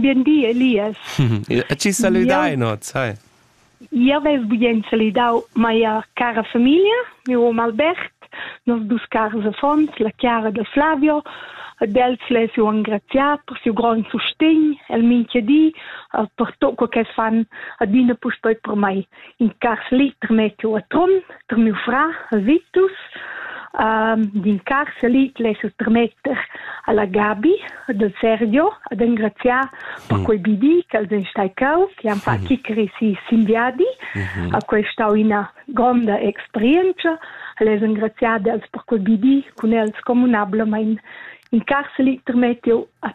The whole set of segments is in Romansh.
Bien di, Elias. E ci saludain oz, hai. Io vess bugent salidau mia cara famiglia, miu hom Albert, nos dus cars affons, la Chiara da Flavio, ad els les ho engraziat per siu grond sustegn el mincha di, per tot quo che fan adina puspei per mei. in carli termetu a Trun, ter miu fra, Vitus, um, din carceli lesu termetter alla Gabi del Sergio ad engraziar per mm. quei bidi che els ein stai cau, che han fatto mm. chiccari si simbiadi, mm-hmm. a quei stau ina gronda experienza, les engraziar els per quei bidi cun els communablement in carceli termetiu a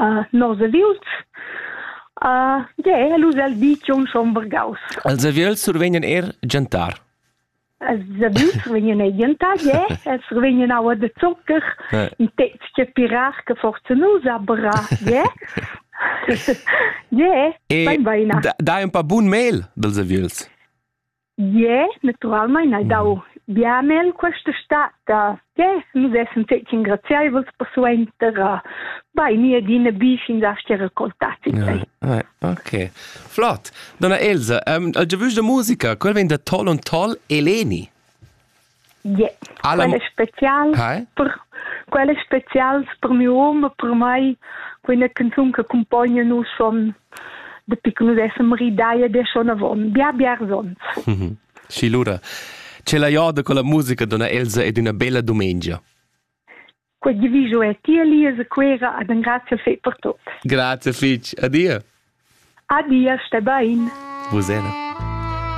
uh, nos aviuls. Uh, yeah, els al ditg on son vargaus. Els aviuls survegnan er gentar. Els aviuls survegnan er gentar, yeah. Els survegnan aua de zocker, eh. in tezche pirar che forzen us abra, yeah. yeah, e, bain baina. Da, dai un pa bun mail dels aviuls. Yeah, naturalmein hai dau biamel questa stata che nus essen fetg ingrazieivels persuenter a bei mi adina bi fin dasti raccoltati. Ja. Ah, ok. Flott. Donna Elsa, um, il giovus da musica, quel vegn da Tol und Tol Eleni. Yeah. Quel è special, Hi? per, quel è special per mio uomo, per mai, quella canzone che accompagna noi schon da piccolo adesso ridaia de schon avon, bia bia zons. Mhm. Schi lura. Ce la jorda con la musica donna Elsa ed una bella domenica. Quel diviso è tia Lisa Quera ad un grazie fe per tutto. Grazie fitch, adia. Adia, sta bene. Vous